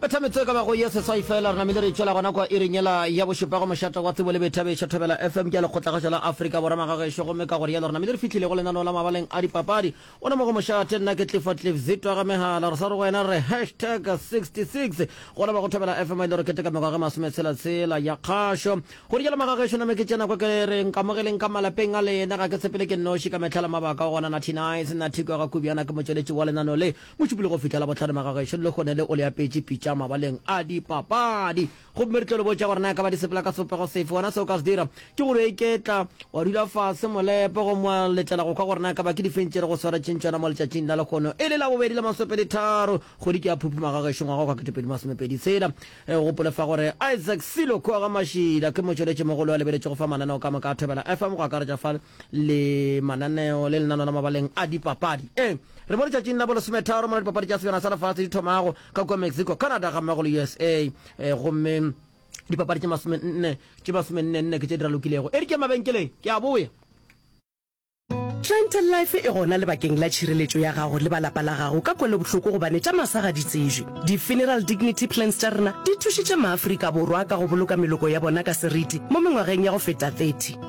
Bethametse e ka bago ye seswai fela, re namile re tšwela gona kwa iring yela ya bošupa go mošate wa tsebo le boithabišo. Thobela FM ke ya lekgotlagaša la Afrika Borwa magagešo, gomme ka go rialo re namile re fihlile go lenaneo la mabaleng a dipapadi. O ne mo go mošate, nna ke Clifford Cliff Zito a ga megala. Re sa re go wena re re hashtag 66 go leba go Thobela FM a ile re keteka mengwaga e masometshela tshela ya kgašo. Go rialo magagešo, name ke tsena kwa ke re nkamogeleng ka malapeng a lena, ga ke tshepele ke nnoši ka mehla le mabaka o gona Natty Nice, Natty Kwega Kubyana ke motšweletši wa lenaneo le. Mošupologo go fihla Labohlano Magagešo le kgone le o le apetše pitša mabaleng a dipapadi. Gomme re tlo le botša gore na e ka ba di sepela ka sebopego sefe. Wena se o ka se dira ke go re iketla, wa dula fase molepo gomme wa letela go kwa gore na e ka ba ke difeng tše re go swaretšeng tšona mo letšatšing la lekgono e le la bobedi la masopedi tharo kgwedi ke ya Phuphu Magagešo ngwaga wa kete pedi masome pedi tshela. O gopole fa gore Isaac Silo Khoga Mashila ke motšweletši mogolo a lebeletšego fa mananeo ka moka a Thobela FM go akaretša fa le mananeo le lenano la mabaleng a dipapadi. E re mo letšatšing la bolesometharo mola dipapadi tša sebjana sa lefatshe di thomago ka kua Mexico, Canada ga mmago le USA. E, gomme dipapadi tše masomenne tše masomennenne ke tše di ralokilego. E re ke mabenkeleng ke a boya. Clientele life e gona lebakeng la tšhireletšo ya gago le ba lapa la gago ka kwelobohloko gobane tša masa ga di tsejwe. Di-funeral dignity plans tša rena di thušitše Maafrika Borwa ka go boloka meloko ya bona ka seriti mo mengwageng ya go feta 30.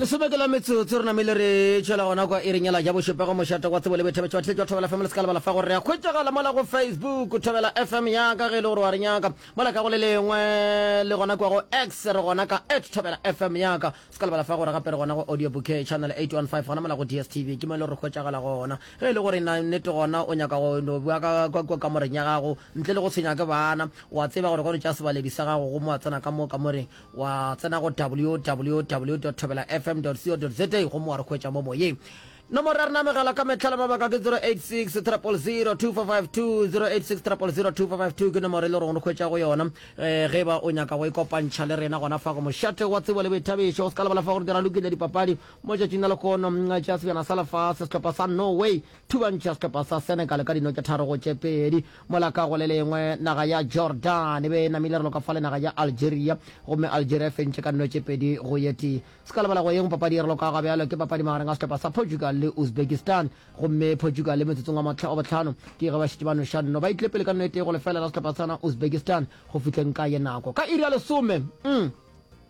lesome ke la metsotso re namele re tšwela gona kwa e renyela ja bošopego mošate kwa tsebo le bethebetšo wa tletša thobela fm le se ka lebala fa gore re ya kgwetšagala mola go facebook thobela fm ya ka ge e le gore wa re nyaka mola ka go le lengwe le gona kwa go x re gona ka at thobela fm ya ka se ka lebala fa gore gape re gona go audio bouquet channel 815 gona mola go dstv ke mo e le gore re kgwetšagala gona Ge e le gore na nnete gona o nyaka go no bua ka, ka kua kamoreng ya gago, ntle le go tshwenywa ke baana, o a tseba gore ge o no tšea sebaledi sa gago gomme wa tsena ka mo kamoreng, wa tsena go www dot thobela fm dot co dot za gomme wa re hwetša mo moyeng. Nomoro ya rena ya mogala ka mehla le mabaka ke 086 000 2452, 086 000 2452 ke nomoro e le gore o re hwetša go yona eh, ge ba o nyaka go ikopantšha le rena gona fa go mošate wa tsebo le boithabišo. O se ka lebala fa gore di ralokile dipapadi, Mo tšatšing la lehono a tšea sebjana sa lefase, sehlopha sa Norway thubantšha sehlopha sa Senegal ka dino tše tharo go tše pedi. Mola ka go le lengwe, naga ya Jordan e be e namile relo ka fa le naga ya Algeria, gomme Algeria e fentše ka dino tše pedi go ye tee. Se ka lebala go yeng papadi e relo ka gabjalo ke papadi magareng a sehlopha sa Portugal le Uzbekistan, gomme Portugal motsotsong wa wa bohlano ke ge ba šetše ba noša dino ba itlepele ka dino e tee go lefeela la sehlopha sa Uzbekistan go fihleng ka ye nako ka iri ya lesome.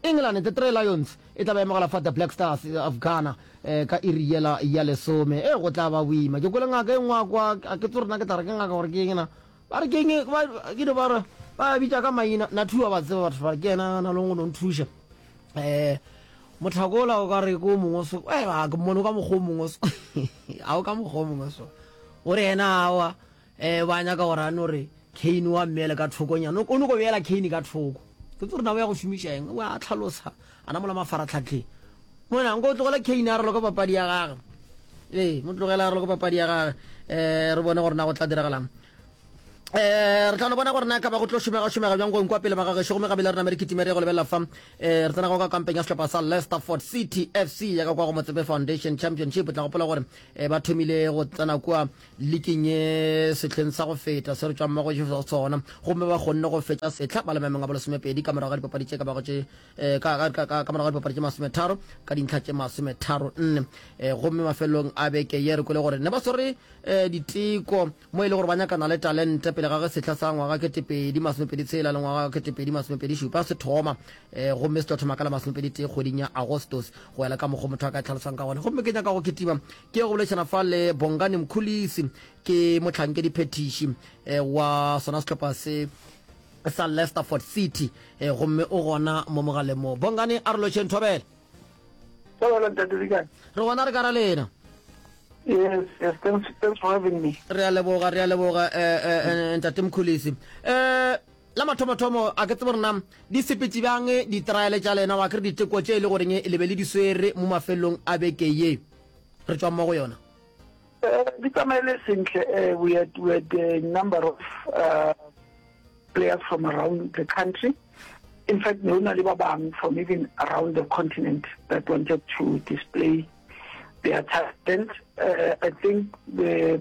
England The Three Lions e tla ba emogela fa The Black Stars of Ghana eh, ka iri yela ya lesome. E go tla ba boima. Ke kwele ngaka e nngwe a kwa, a ke tsore na ke tla re ke ngaka gore ke eng na. Ba re ke eng, ba ke no ba re ba bitša ka maina. Na thuwa ba tseba batho ba ke ena na leng go no nthuša. Eh motlhakola o ka re ko mongwe so eh ba ke mmono ka mokgwa o mongwe so. A o ka mokgwa o mongwe so. O re ena awa Ee, ba nyaka gore a no re, Cain o a mmeele ka thokonyana. O nyoko beela Cain ka thoko. Ke tse gore na o ya go šomiša eng? O a tlhalosa, a na mola mafaratlhatlheng. Mona, nko o tlogela Cain a re loka papadi ya gage. Ee, mo tlogela a re loka papadi ya gage. Um re bone gore na go tla diragalang. Eh, re tla no bona gore na ka ba go tlo šomega šomega bjang go nkwa pele ba gagešo gomme gabele re name re kitima re go lebelela fa um re tsena go ka kampeng ya sehlopha sa lesterford city fc ya ka kwa go motsebe foundation championship tla gopola gore um ba thomile go tsena kua um le kenye sehleng sa go feta se re tšwang mo go Jesu go sona gomme ba kgonne go fetša sehla ba le maemong a bolesomepedi ka morago ga dipapadi tše ka bago tše eh, ka morago ga dipapadi tše masometharo ka dintlha tše masometharo nne eh, gomme mafelelong a beke ye re kwele gore ne ba swere eh, diteko mo e le gore ba nyakana le talente pele ga ge sehla sa ngwaga ketepedi masomepedi tshela le ngwaga ketepedi masomepedi šupa se thoma gomme se tlo thoma ka la masomepedi tee kgweding ya agostos go ela ka mokgwa motho a ka e tlhalosang ka gone gomme ke nyaka go ketima Ke ya go boledišana fa le Bongani Mkhulisi, ke mohlankedi phethiši eh, wa sona sehlopha se sa Lesterford City eh, gomme o gona mo mogaleng mo. Bongani a re lošeng thobela. Thobela ntate di kae? Re gona re ka ra lena. Yes, yes, thanks, thanks for having me. Re a leboga, re a leboga eh, eh, eh, ntate Mkhulisi. Eh, La mathomothomo, a ke tsebe gore na di sepetše bjang ditraele tša lena, wa kere diteko tše e le goreng le be le di swere mo mafelelong a beke ye re tšwang mo go yona? Ee, di tsamaile sentle. Ee, we had, we had a number of uh, players from around the country. In fact, ne go na le ba bang from even around the continent that wanted to display their talent. Uh, I think the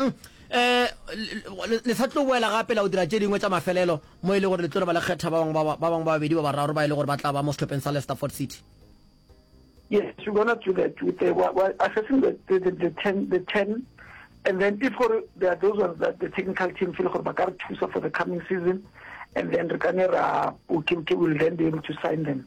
um le sa tlo boela gape la o dira tše dingwe tša mafelelo mo e le gore le tlo re ba le kgetha ba bangwe ba bangwe ba babedi ba bararo ba e le gore ba tla ba mo sehlopheng sa Lesterford City Yes, we're going to do that with the, we're, we're assessing the, the, the, the, 10, the 10 and then if gore there are those ones that the technical team feel gore ba ka re thusa for the coming season and then re ka ne ra okay, okay, we'll then be able to sign them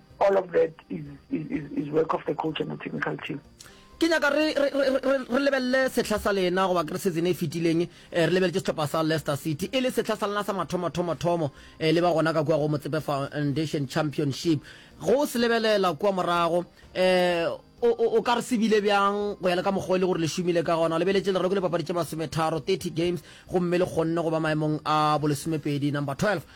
all of that is, is, is, is work of the coach and the technical team ke nyaka re lebelele setlha sa lena goba ke re season e fetileng eh, re lebeletse setlhopha sa leicester city e le setlha sa lena sa mathomathomothomo um eh, le ba gona ka kua go motsepe foundation championship go se lebelela kua morago um o ka re sebile bjang go ya le ka mokgwa e le gore le šomile ka gona lebeletse lereko le papadi tše masometharo 30 games gomme le kgonne go ba maemong a bolesomepedi number 12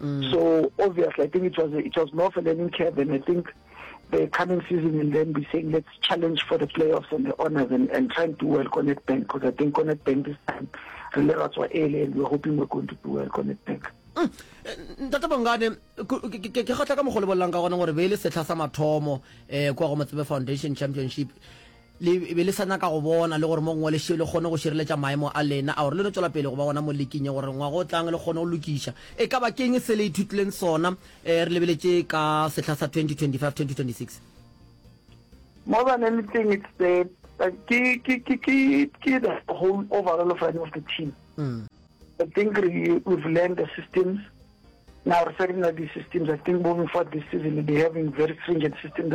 Mm. So obviously, I think it was it was more for learning curve, and I think the coming season will then be saying let's challenge for the playoffs and the honors and, and try and do well Connect Bank because I think Connect Bank this time really that's what early and we're hoping we're going to do well Connect Bank. Mm. Eh, ntate bongane ke kgotla ka mogolo bolelang ka gona gore be e le setlha sa mathomo um kwa go motsebe foundation championship Le be le sa nyaka go bona le gore mo gongwe le še le kgone go šireletša maemo a lena a gore le no tšwela pele go ba gona mo liking ye gore ngwaga o tlang le kgone go lokiša. E ka ba ke'ng se le ithutileng sona re lebeletše ka sehla sa 2025-2026? Mo ba ne le thing it's the ke ke ke ke ke the whole overall of running of the team. I think re we've learned the systems now re sa di na di systems I think moving forward this season we'll be having very stringent systems.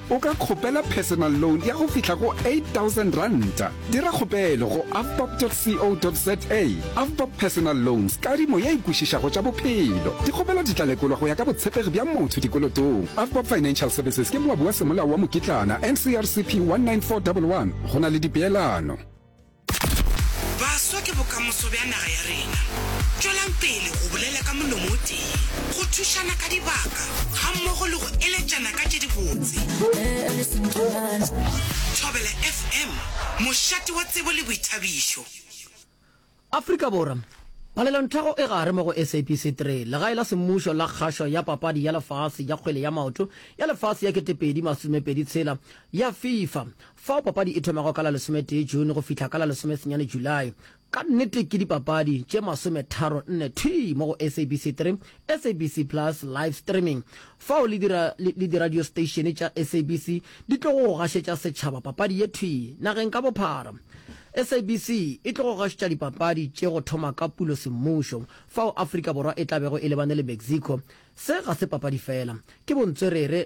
O ka kgopela personal loan ya go fihla go R8,000. Dira kgopelo go avbob.co.za. Avbob Personal Loans, kadimo ye e kwešišago tša bophelo. Dikgopelo di tla lekolwa go ya ka botshepegi bja motho dikolotong. Avbob Financial Services ke moabi wa Semolao wa Mokitlana, NCRCP 19411. Go na le dipeelano. Baswa ke bokamoso bja naga ya rena. Tšwelang pele go bolela ka molomo o tee, go thušana ka dibaka gammogo le go eletšana ka tše dibotse. Thobela FM, mošate wa tsebo le boithabišo. Afrika Borwa, Palelonthago e gare mo go SABC 3, legae la semmušo la kgašo ya papadi ya lefase ya kgwele ya maoto ya lefase ya 2026 ya FIFA. Fao papadi e thomago ka la lesometee June go fihla ka la lesomesenyane July. Ka nnete ke dipapadi tše masometharo nne thwii mo go SABC Three, SABC Plus, Live Streaming. Fao le dira, le, le diradio steišene tša SABC di tlogo go gašetša setšhaba papadi ye thwii nageng ka bophara. SABC e tlogo gašetša dipapadi tše go thoma ka Pulo semmušo, fao Afrika Borwa e tla bego e lebane le Mexico. Se ga se papadi feela, ke bontswerere,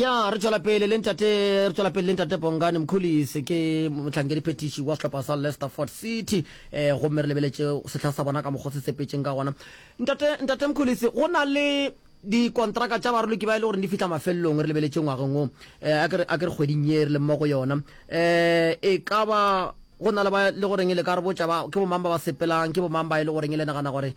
ya re tswela pele le ntate re tswela pele le ntate bongane mokholise ke motlhankedi phetiši wa sehlopha sa lesterford city eh gomme re lebeletse sehla sa bona ka mokgwa se sepetseng ka gona ntate ntate mokholise go na le dikontraka tša baroloki ba e le gore di fitlha mafelelong re lebeletse ngwageng o eh, a ke re kgweding ye re le mo go yona eh e ka ba go na le ba le goreng e le ka re botša ba ke bomang ba ba sepelang ke bomang ba e le goreng e le nagana gore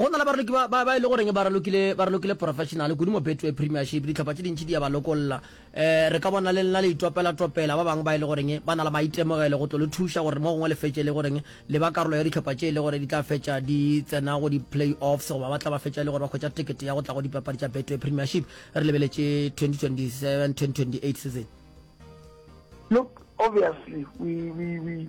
Go na le baraloki ba, ba, ba e le goreng ba ralokile, ba ralokile professional kudu mo Betway Premiership. Dihlopha tše dintši di ya ba lokolla. E, re ka bona le lena le itopela-topela ba bangwe ba e le goreng ba na le maitemogelo go tlo le thuša gore mo gongwe le fetše e le goreng le ba karolo ya dihlopha tše e le gore di tla fetša di tsena go di-playoffs goba ba tla ba fetša e le gore ba hwetša tekete ya go tla go dipapadi tša Betway Premiership re lebeletše 2027, 2028 season. Look, obviously, we, we, we.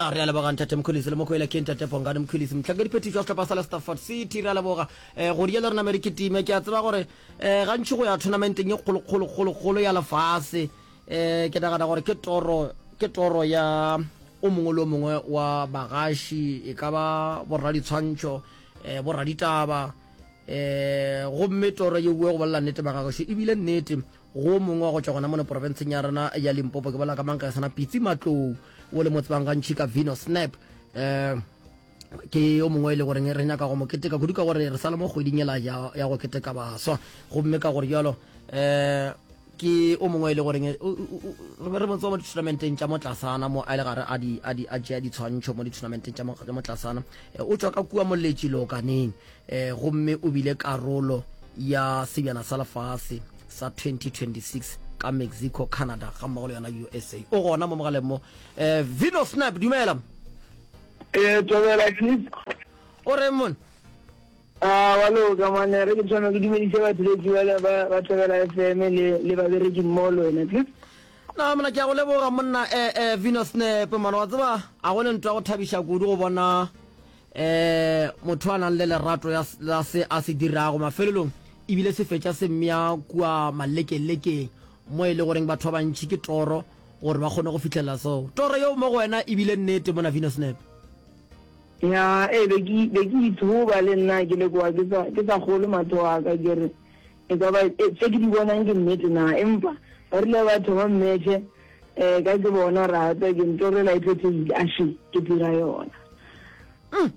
A re a leboga Ntate Mkhwelisi le Mokwele ke Ntate Bongani Mkhwelisi mohlankadiphethiši wa sehlopha sa Lestafford City. Re a leboga um go diela rena Mary Kitime. Ke a tseba gore um gantši go ya thonamenten ye kgolokgolokgolokgolo ya lefase um ke nagana gore ke toro ke toro ya o mongwe le o mongwe wa bagaši e ka ba borraditshwantšho um borraditaba um gomme toro ye bue go bolela nnete bagagoši ebile nnete Go mongwe wa go tšwa gona mono porofenseng ya rena ya Limpopo, ke bolela ka mang ka ge sana Pitsi Matlou, o le mo tsebang gantšhi ka Vino Snap. Um ke yo mongwe e le goreng re nyaka go mo keteka kudu ka gore re sa le mo kgweding ela ya go keteka baswa gomme ka gore jalo um ke o mongwe e le goreng re mo mo ditournamenteng tša mo tlasana mo a le gare a tšea ditshwantšho mo ditournamenteng tša mo tlasana o tswa ka kua moletši lokaneng E, gomme o bile karolo ya Sebjana sa Lefase sa 2026 ka Mexico, Canada ga mmogo le yona USA. O gona mo mogaleng mo. E, Vino Snap, dumela. E, Tobela Cliff. O reng mone? A, wa loka monna. Re ke tshwanelo ke dumedise batheletsi bale ba, ba Tobela FM le, le babereki mmogo le wena, Cliff. Na, monna, ke a go leboga monna. E, e, Vino Snap, monna, wa tseba, a go le ntwa go thabiša kudu go bona um motho a nang le lerato ya s- la se a se dirago mafelelong ebile se fetša se mmea kua malekelekeng mo e le goreng batho ba bantši ke toro gore ba kgone go fitlhelela seo toro yeo mo go wena ebile nnete mona venus nepe ya e be ke be ke ithoba le nna ke le kwa ke sa ke sa golo matho a ka ke re E ka ba tše ke di bonang ke nnete na? Empa ba rile ba thoma mmetše eh, ka ke bona ra tswa ke ntorela e phethegile, a še ke dira yona. Mm.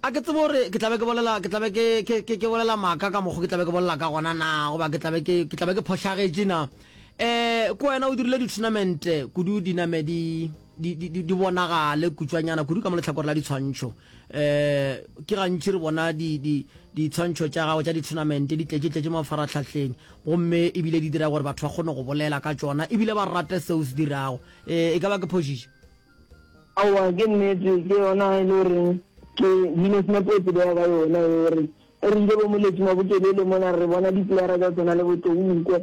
A ke tsebo gore ke tlabe ke bolela ke tlabe ke ke ke ke bolela maka ka mokgo ke tlabe ke bolela ka gona na goba ke tlabe ke ke tlabe ke phošagetše na eh ko wena o dirile di-tournament kudu dinamedi di, di, di bonagale kutšwanyana kudu ka mo letlhakore la ditshwantšho um ke gantši re bona ditshwantšho di, di tša gago tša dithonamente di tletše-tletše mafaratlhahleng gomme ebile di dira gore batho ba kgone go bolela ka tšona ebile ba rate seo se dirago um e ka ba ke phošiše aowa ke nnete ke yona e le goreng ke dino senapo e tsebega ka yona e gore Ge re ile bo moleteng wa botelele mola re bona dipeyara tša tsona le botounkwe,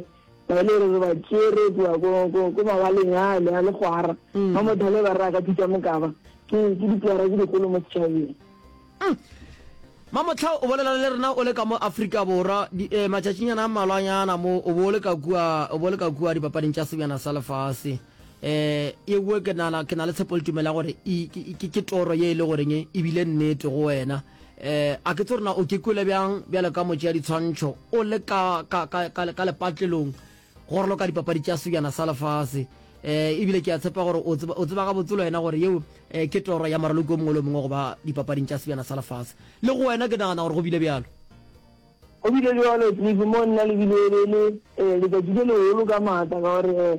ga e le gore re ba tšere kua ko, ko, ko mabaleng ale a legwara, ba mothale ba re a ka thuta mokaba. Ke, ke dipeyara tše dikgolo mo setšhabeng. Mamothla o bolela le rena o le ka mo Afrika Borwa, di, eh, matšatšinyana a mmalwanyana mo o bo o le ka kua, o bo o le ka kua dipapading tša sebjana sa lefase. Eh, ewe ke nana, ke na le tshepo le tumelo ya gore e, ke, ke, ke toro ye e le goreng e bile nnete go wena. Eh, a ke tse rena o ke kwele bjang bjale ka motse ya ditshwantšho o le ka, ka, ka, ka, ka lepatlelong gore lo ka dipapadi tša sebjana sa lefase eh ebile ke a tshepa gore o tseba o tseba ga botsolo ena gore yeo eh, ke toro ya maraloko mongwe le mongwe go ba dipapading tša sebjana sa lefase le go wena ke nagana gore go bile bjalo go bile bjalo cliff mo nna le bile le le eh, letšatši le legolo ka maatla ka gore eh,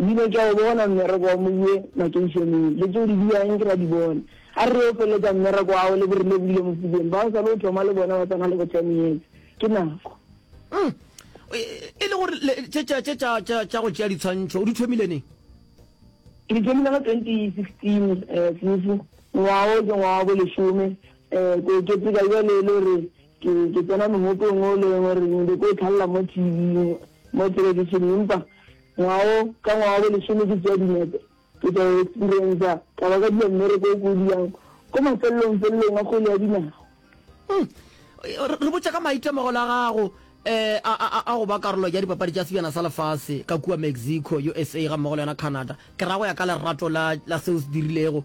Di ile tša o bona mmereko wa Moye makeišeneng, le tše o di biago nke ba di bone. A re re yo feletša mmereko wa gago le bo re lebohile Mofokeng, ba o sa le o thoma le bona ba tsena le go ten years. Ke nako. Umm. E le gore le, tše tša, tše tša, tša, tša go tšea ditshwantšho o di thomile neng? Ke di thomile ka twenty sixteen, um Sefo. Ngwaga o ke ngwaga wa bo lesome, um ko keteka bjale e le gore Ke, ke tsena mohopong o le gore ke nyake go tlhalela mo TV, mo television, empa ngwaga o, ka ngwaga wa bo lesome ke tšea dinepe, ke tla experiencer, ka ba ka dira mmereko o ko o dirang ko mafelelong felelong a kgwele ya dinao. Hmm. Re botša ka maitemogelo a gago um a, a, a go ba karolo ya dipapadi tša sebjana sa lefase ka kua Mexico, USA gammogo le yona Canada. Ke ra go ya ka lerato la, la seo o se dirilego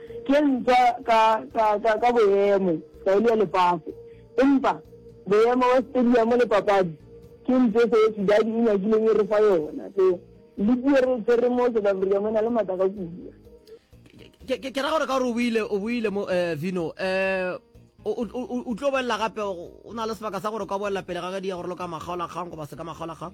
Ke ntwa ka, ka, ka, ka boemo, taelo ya lefase. Empa, boemo bja stadiamo le papadi, ke ntwa e Soweto Derby e nyakileng e re fa yona. So, liki ye re e tshwereng mo South Africa mo e na le matla ka kudu. Ke, ke, ke ra gore ka gore o buile, o buile mo, eh, Vino, eh, o, o, o, o tlo boelela gape, o na le sebaka sa gore o ka boelela pele ga ge di ya gore lo ka makgaolakgang goba se ka makgaolakgang.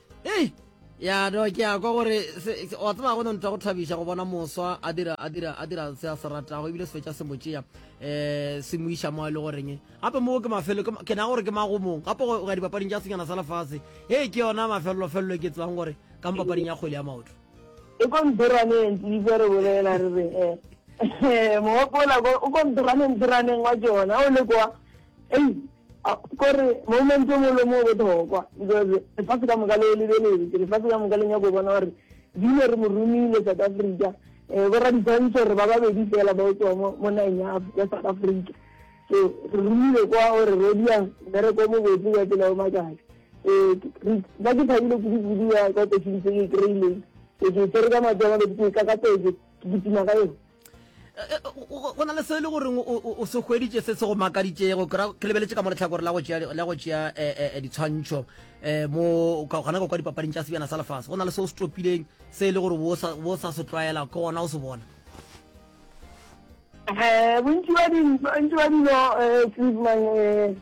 ei ya no ke ya kwa gore wa tseba go ne ntwa go thabiša go bona moswa a dira a dira a dira se a se ratago ebile se fetša se mo tšea um se mo iša mo e le goreng gape moo ke mafelo ke na gore ke magomong gape go ya dipapading tša senyana sa lefase e ke yona mafelelofelelo ke tsebang gore ka mo papading ya kgwele ya maoto e kontiraneng tlise re bolela re re e eh, mogopola o kontiraneng tiraneng wa jona o le kwa ei A Gore moment yo molo mo bothokwa because lefase ka moka le lebeletse, lefase ka moka le nyako go bona gore dino re mo romile South Africa, eh bo raditshwantsho re ba babedi fela ba tswa mo mo nageng ya ya South Africa. So re romile kwa o re rodia mmereko mo botse ka tsela o makatsa. Eh re ba ke thabile kudu kudu ya ka opportunity e kry-ileng. Ke ke tsere ka matsoa ba be ke ka ka tse ke ke tima ka yone. go na le se e le goreng o se hweditše se se go makaditšego ke lebeletše ka mo letlhakore la go tšea eh, eh, eh, ditshwantšho um mo gona go kwa dipapading tša sebjana sa lefase go na le se o se topileng se e le gore bo sa se tlwaela ke gona o se bona bontši ba dilo cleveman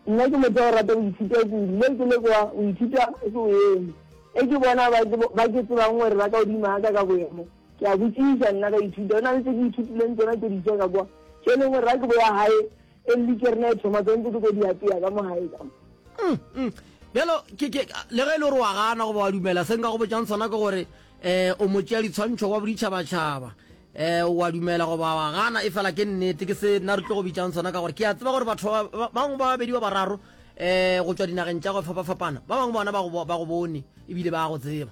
nna ke motho o rata go ithuta kudu le ke le kwa o ithuta se o eme e ke bona ba ke tsebang gore ba ka odima ka ka boemo Ke a botšiša, nna ka ithuta. Go na le tše ke ithutileng tšona tše ditša ka kwa, tše e leng gore ga ke boya gae, e le ke rena e thoma tse ntse ke tlo di apeya ka mo gae ka mo. Bjalo, ke, ke, le ge e le gore wa gana goba wa dumela, se nka go botšang sona ke gore um o motšea ditshwantšho wa boditšhabatšhaba, um wa dumela goba wa gana, efela ke nnete. Ke se nna re tlo go bitšang sona ka gore ke a tseba gore batho ba, ba bangwe ba babedi ba bararo um go tšwa dinageng tša go fapafapana, ba bangwe bona ba go, ba go bone ebile ba go tseba.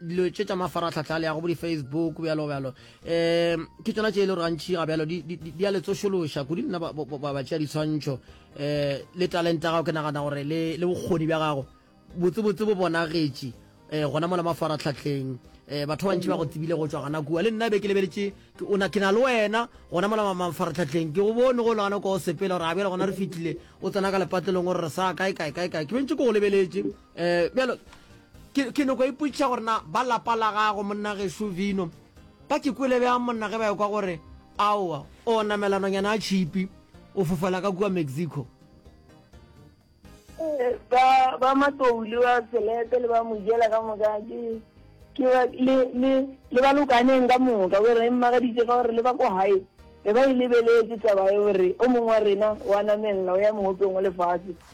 dilo tše tša mafaratlhatlha le ya go bo di-facebook bjalo bjalo um ke tsona tše e le gore gantšhi ga bjalo di a le tsošološa kudu nna ba tšea ditshwantšho um le talente gago ke nagana gore le bokgoni bja gago botsebotse bo bonagetše um gona mola mafaratlhatlheng um batho ba bantši ba go tsebile go tswa gana kua le nna be ke lebeletse ke na le wena gona mola mafaratlhatlheng ke go bone go le gana kwa o sepela gore ga bjale gona re fitlhile o tsena ka lepatlelong gore re sa kae kae kae kae ke bentse ko go lebeletse um bjalo ke noko e putša gore na ba lapa la gago monna geso vino ba ke kwele bjang monna ge ba ekwa gore aowa o namelanonyana a chipi o fofela ka kua mexico ba ba matsouli ba selete le ba mojela ka moka ke ke le le le ba lokaneng ka moka gore re mmagaditse ka gore le ba kwa hae re ba e lebeletse taba e gore o mongwe wa rena wa namelela o ya mogopeng wa lefatshe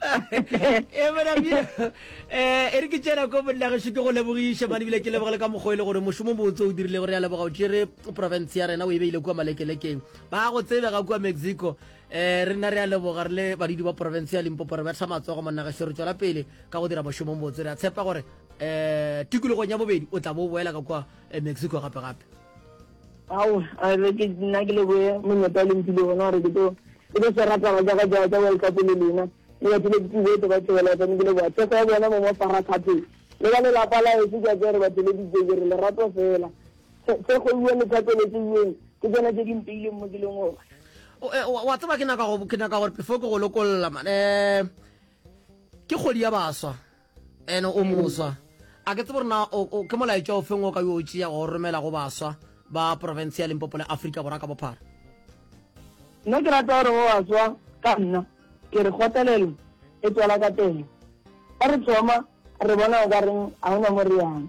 e monabie e re ke tsena ko bonnageso ke go lebogiše mane bile ke leboge le ka mokgwa e le gore mošomo botse o dirilego re ya leboga o tšere province ya rena o e beile kua malekelekeng ba go tsebega kua mexico um re nna re ya leboga re le badudi ba province ya limpopo re betha matsogo monnageso re tswela pele ka go dira mošomo botse re a tshepa gore um tikologong ya bobedi o tla bo o boela ka kua eh, mexico gape gape Ao, a re ke nna ke leboe monyetla o le mphile ona gore ke tlo ke tlo swara taba tsa ka tsa tsa World Cup le lena. Ke batlile ke boetse ba tshebeletsa ne ke leboa thekgo ya bona mo mo fara khatheng. Le ba lelapa la heso ke a tsere ba theleditse ke re lerato fela. Thekgo iwe le thapeletse iweng ke tsona tse di mpeileng mo ke leng gona. O e, wa wa tseba ke naka go ke naka gore before ke go lokolla man. Eh ke kgwedi ya baswa. Ene o moswa. A ke tsebe gore na ke molaetša o feng o ka yo o tšeago o romela go baswa ba profense ya Limpopo le Afrika Borwa ka bophara. Nna ke rata gore go baswa ka nna ke re kgotlelelo e tswala ka pele. Fa re thoma re bona o ka reng ga o na mo re yang.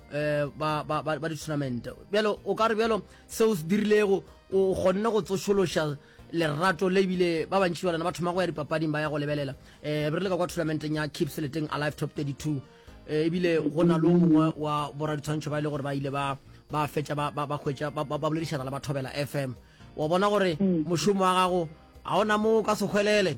eh, ba, ba, ba, ba di-tournament bjale o ka re bjalo seo se dirilego o kgonne go tsošološa lerato le ebile ba bantši ba lena ba thoma go ya dipapading ba ya go lebelela um re le ka kwa tournamenteng ya keep seleteng alive top 32 eh, ebile go na le o mongwe wa boraditshwantšho ba e le gore ba ile ba ba fetša ba ba hwetša ba boledišana le ba thobela f m wa bona gore mm. mošomo wa gago ga ona moo ka sekgwelele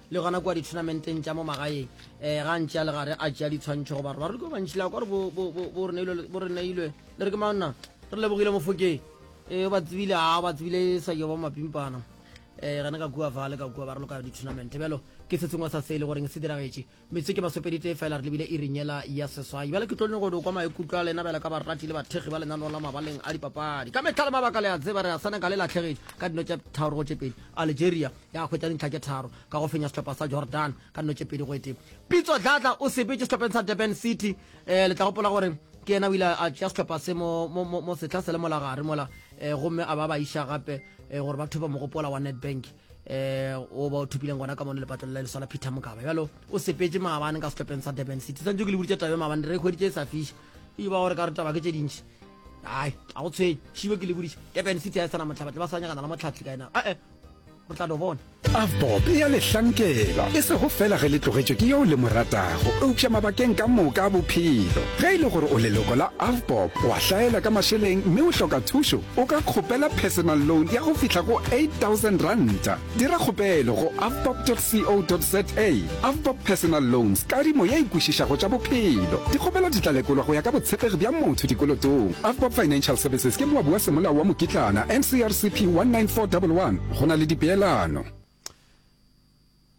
Le gona kua dithonamenten tša mo magaeng, um ga ntši a le gare a tšea ditshwantšho goba re bareki ba bantši la kwa re bo, bo, bo, bo re neilwe, bo re neilwe. Le re ke mang na? Re lebogile Mofokeng. E, o ba tsebile, a, o ba tsebile e sa yoba mapimpana. E, gane ka kua fa le ka kua ba re loka dithonamente. Bjalo, ke se sengwe sa se e le goreng se diragetše. Metsotso ke masopedi tee fela re lebile iring yela ya seswai. Bjale ke tlo nyoko do kwa maikutlo a lena bjalo ka barati le bathekgi ba lenaneo la mabaleng a dipapadi. Ka mehla le mabaka le a tseba re a Senegal e lahlegetše ka dino tše tharo go tše pedi. Algeria, ya hwetša dintlha tše tharo ka go fenya sehlopha sa Jordan ka dino tše pedi go ete. Pitso Dladla o sepetše sehlopheng sa Durban City. Um le tla gopola gore ke yena o ile a tšea sehlopha se mo, mo, mo, mo sehla se le molagare mola um gomme a ba ba iša gape um gore ba thopa mogopola wa Nedbank um o ba o thopileng gona ka mono lepatlong la leso la Peter Mokaba bjalo o sepetše maabane ka sehlopheng sa Durban City santse ke le boditše tabe maabane re kgweditše e sa fiša e ba gore ka re taba ke tše dintši ai a go tshwenye šibe ke le boditše Durban City a e sana motlhabatle ba sa nyakana la motlhatlhi ka ena ee o tla no bona avbob e a lehlankela e sego fela ge le tlogetšwe ke yeo le mo ratago eupša mabakeng ka moka a bophelo ge e le gore o leloko la avbob o a hlaela ka mašeleng mme o hloka thušo o ka kgopela personal loan ya go fihla go 8000 ranta dira kgopelo go avbob co za Avbob Personal Loans, Kadimo ye e kwešišago tša bophelo. Dikgopelo di tla lekolwa go ya ka botshepegi bja motho dikolotong. Avbob Financial Services ke moabi wa Semolao wa Mokitlana, NCRCP 19411, go na le dipeelano.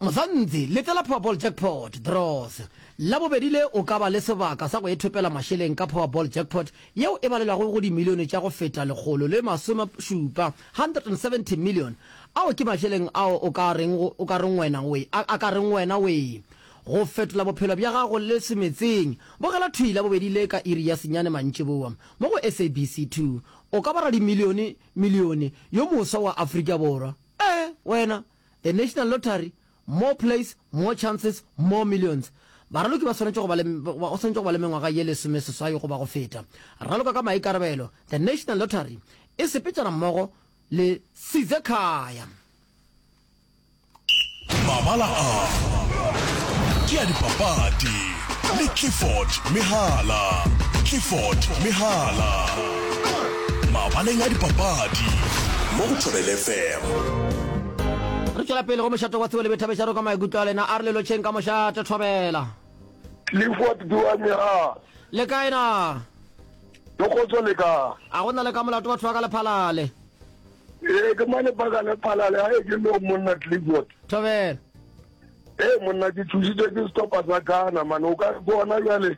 Mzanzi, Letela Powerball Jackpot, Draws, Labobedi le o ka ba le sebaka sa go ithopela mašeleng ka Powerball Jackpot yeo e balelwago go dimilione tša go feta lekgolo le masome šupa 170 million ao ke mašeleng ao o ka reng o ka reng wena we a a ka reng wena we go fetola bophelo bja gago le se metseng bogela thwi la bobedi le ka iri ya senyane mantšiboa mo go SABC 2 o ka ba radimilione milione yo moswa wa Afrika Borwa ee wena the national lottery More plays, more chances, more millions. Baraloki ba swanetše go ba le, go swanetše go ba le mengwaga ye lesomeseswai goba go feta. Raloka ka maikarabelo, The National Lottery e sepetšana mmogo le Sizekhaya. Mabala a ke a dipapadi le Clifford Mehala. Clifford Mehala mabaleng a dipapadi mo go Thobelefm. Re tšwela pele go mošate wa Tsebo le Boithabiša re kwa maikutlo a lena. A re le lotšheng ka mošate. Thobela. Clifford Duane, A. Le kae na? Ke kgotso le ka. A go na le ka molato batho ba ka Lephalale? Ee, ke mane ba ka Lephalale. A e ke no monna Clifford. Thobela. Ee monna ke thusitswe ke sehlopha sa Ghana mane o ka re ke ona bjale.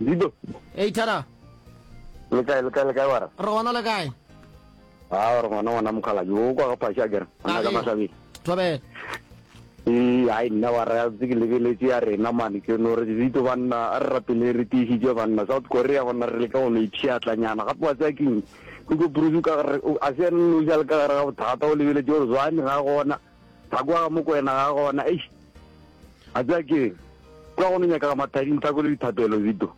Dido. Hey Thara. Le kae le kae le kae wara? Re gona le kae? Ah, re gona gona mokhala. Yo kwa ga phasha kere. Ana ka masabi. Tobela. Eh, ai nna wa ra tse ke lebeletse ya rena mane ke no re ditso banna a re rapele re tiisitse banna South Korea gona re le ka go no ipshiatlanyana gape wa tsaya keng go go bruce ka re a se no ja le ka re ga bothata o lebeletse gore zwane ga gona Ga kwa ga Mokwena ga gona. Eish. A tsaya ke kwa go no nyaka ga mathading thako le dithapelo zito.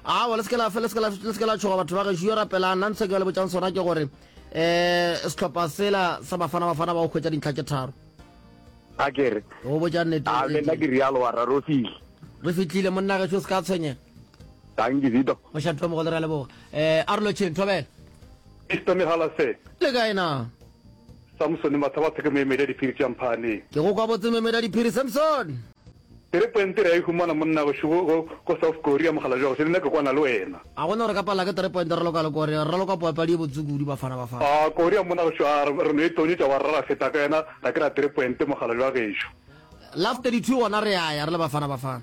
Awa le se ke la fe le se ke la le se ke la tshoga batho ba ge yo rapela nna ntse ke le botsang sona ke gore eh setlhopha sela sa bafana bafana ba go khwetsa dintlha tše tharo. A kere. Go botsa nnete. A le nna ke rialo wa rarofile. Re fitlile monna ge se se ka tshwenyega. Tang ke zito. Moshantho mo go le ra leboga. Eh a re lo tšheng thobela. Mr. Mehala sir. Le kae na? Samsone, Mathaba a theke memedi a diphiri tša mphane. Ke go kwa botse memedi a diphiri, Samsone! Ke re pwente re a e humana monna gešo go, go, ko South Korea, mokgalabje wa gešo, le nna ke kwana le wena. A go ne gore ka pala ke tere pwente re loka le Korea, re ra loka poapadi ye botse kudu, Bafana, Bafana. A Korea, monna gešo, a re, re no e tonyetša wa re ra ra feta ka yena, ga ke ra tere pwente, mokgalabje wa gešo. Love 32 gona re ya ya re le Bafana, Bafana.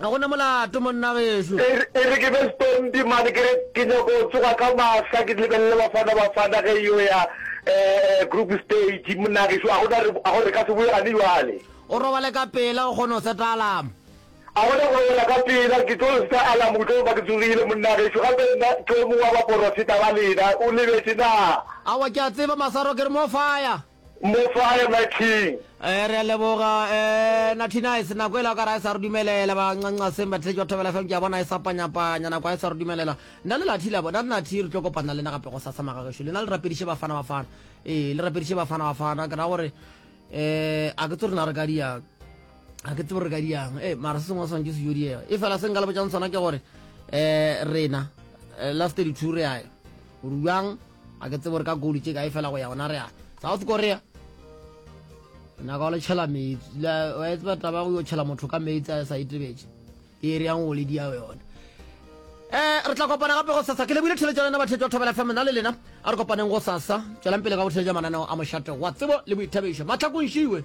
Ga go na molato, monna gešo. E re ke be setompi mane ke re ke nyako tsoga ka mahla ke lebelele Bafana Bafana ge yo ya group stage monna gešo a gona re a go re ka se boe gane jwale. O robale ka pela o kgone go seta alarm. A gona go robala ka pela ke tlo seta alarm o tlo ba ke tsogile monna gešo gape nna ke o mongwe wa baporofeta ba lena o lebetše na. Aowa ke a tseba Masaro ke re more fire. Mo sware my king. Eh re a leboga eh Natty Nice nako ele o ka ra e sa re dumelela ba ncanca seng ba tletšwa thobela fm ke a bona e sa panyapanya nako e sa re dumelela nna le Natty la bona Natty re tlo kopana le nna gape go sasa magagešo lena le rapediše bafana bafana ee le rapediše bafana bafana ke ra gore eh a ke tse rena re ka diang a ke tsebo re ka diang ee mara se sengwe swantse se yo diega e fela se nka le botšang sona ke gore um rena eh, last 32 re yae rubjang a ke tsebo re ka golu tše kae fela go ya gona re a south korea naka wa letšhela metsi wa e tseba taba go yo tšhela motho ka metsi a sa itebetše e re yang go le diao yone um re tla kopana gape go sasa ke lebile theletša lena bathetša thobela fm na le lena a re kopaneng go sasa tšwelang pele ka go theletša mananeo a mošate wa tsebo le boithabišo matlhakontšiwe